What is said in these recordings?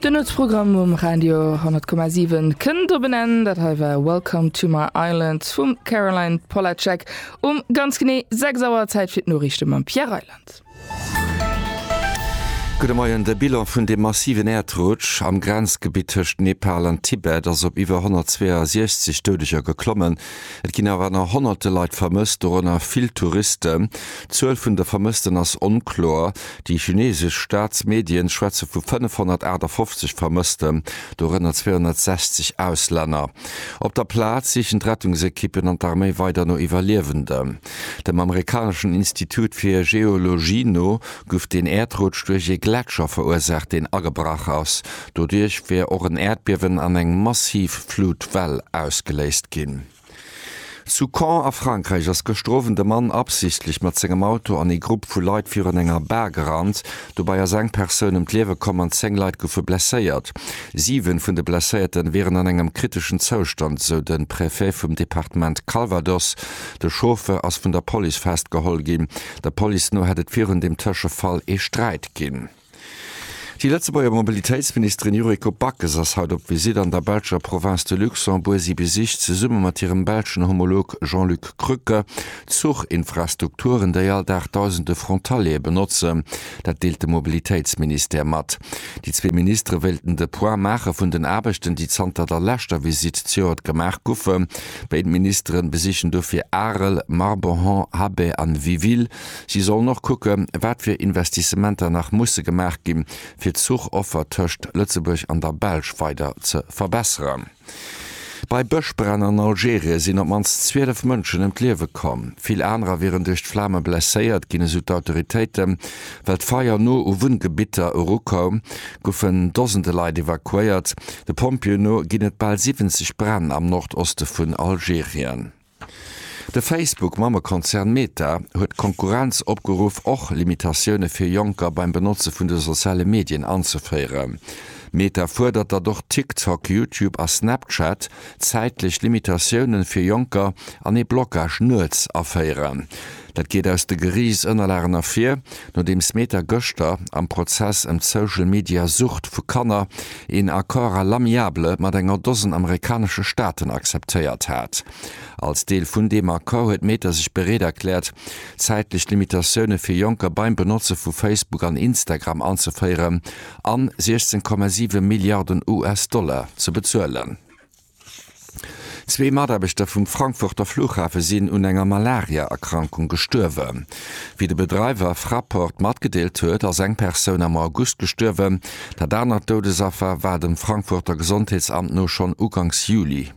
De Nuetsprogramm um Radio 10,7 kënnt op en Enn. Dat hei war Welcome to my Island vum Caroline Polacek um ganz genee 6 Auer. Zäit fir d'Noriichte mam Pierre Reyland. Gudde Moien. De Bilan vun deem massiven Äerdrutsch am Grenzgebitt tëscht Nepal an Tibet ass op iwwer 162 Doudeger geklommen. Et ginn awer nach honnerte Leit vermësst, dorënner vill Touristen. D'Zuel vun de Vermëssten ass onkloer. Déi chinesesch Staatsmedien schwätze vu 558 Vermëssten, dorënner 260 Auslänner. Op der Plaz sichen d'Rettungsekippen an d'Arméi weider no Iwwerliewenden. Dem amerikaneschen Institut fir Geologie no guff den Äerdrutsch duerch ee Gletscher verursaacht, deen agebrach ass. Doduerch wier och en Äerdbiewen an eng massiv Flutwell ausgeléist ginn. Zu Caen a Frankräich ass gëschter Owend e Mann absichtlech mat sengem Auto an ee Grupp vu Leit virun enger Bar gerannt. Dobäi ass eng Persoun ëm d'Liewe komm an 10 Leit goufe blesséiert. Siwe vun de Blesséierten wieren an engem kriteschen Zoustand, esou de Préfet vum Departement Calvados. De Chauffeur ass vun der Police festgeholl ginn. Der Police no hätt et virun deem Tëschefall ee Sträit ginn. Déi Lëtzebuerger Mobilitéitsministerin Yuriko Backes ass haut op Visitt an der belscher Province de Luxembourg. Si besicht zesumme mat hirem belschen Homolog Jean-Luc Krücke d'Zuchinfrastrukturen, déi all Dag dausende Frontaliere benotzen. Dat deelt de Mobilitéitsministère mat. Déi zwee Ministere wéilten de Point maache vun den Aarbechten, déi zanter der leschter Visitt zejoert gemaach goufen. Béid Ministere besichen dofir Arel, Marbohan, Habay an Wiville. Si sollen och kucke wat fir Investissementer nach musse gemaach gi fir d'Zuchoffer tëscht Lëtzebuerg an der Belsch weider ze verbesseren. Bei Bëschbränn an Algerien sinn op d'mannst 12 Mënschen ëm d'Liewe komm. Vill anerer wieren duerch d'Flame blesséiert ginn, esou d'Autoritéiten. Well d'Feier no u Wunngebitter erukoum, goufen Dosende Leit evakuéiert. De Pompjeeë no ginn et bal 70 Bränn am Nordoste vun Algerien. De Facebook-Mammekonzern Meta huet d'Konkurrenz opgeruff, och Limitatioune fir Jonker beim Benotze vun de soziale Medien anzeféieren. Meta fuerdert, datt och TikTok, YouTube a Snapchat zäitlech Limitatioune fir Jonker an ee Blockage nuets aféieren. Dat geet aus de Geriichtsënnerlagen ervir, nodeems Meta gëschter am Prozess ëm d'Social Media Sucht vu Kanner een Accord à l'amiable mat enger Dosen amerikanesche Staaten akzeptéiert hat. Als Deel vun deem Accord huet Meta sech bereet erkläert, zäitlech Limitatioune fir Jonker beim Benotze vu Facebook an Instagram anzeféieren a 16,7 Milliarden US-Dollar ze bezuelen. Zwee Mataarbechter vum Frankfurter Flughafe sinn un enger Malaria-Erkrankung gestuerwen. Wéi de Bedreiwer Fraport matgedeelt huet, ass eng Persoun am August gestuerwen. Dat anert Doudesaffer war dem Frankfurter Gesondheetsamt no schonn uganks Juli.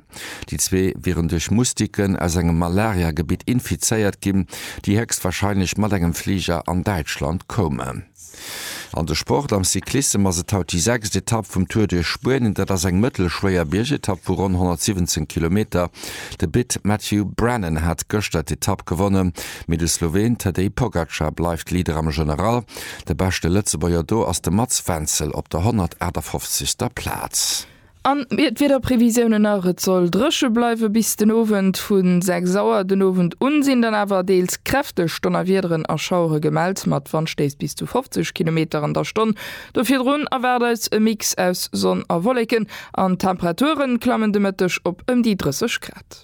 Déi zwee wieren duerch Moustiquen aus engem Malaria-Gebitt infizéiert ginn, déi héchstwarscheinlech mat engem Fliger an Däitschland koumen. An de Sport, Am Cyclissem ass et haut déi sechst Etapp vum Tour duerch Spuenien. Dat ass eng mëttelschwéier Biergetapp vu ronn 117 Kilometer. De Brit Matthew Brennan hat gëschter d'Etapp gewonnen, mee de Sloween Tadej Pogacar bleift Leader am General. De beschte Lëtzebuerger do ass de Mats Wenzel op der 158. Plaz. An d'Wiederprevisiounen nach, Et soll dréche bleiwe bis den Owend. Vu 6 Auer den Owend un sinn dann awer deels kräfteg Donnerwiederen a Schauere gemellt, mat Wandstéiss bis zu 50 Kilometer an der Stonn. Do virdrun erwaart eis e Mix aus Sonn a Wolleken an d'Temperature klammen de Mëtteg op ëm déi 30 Grad.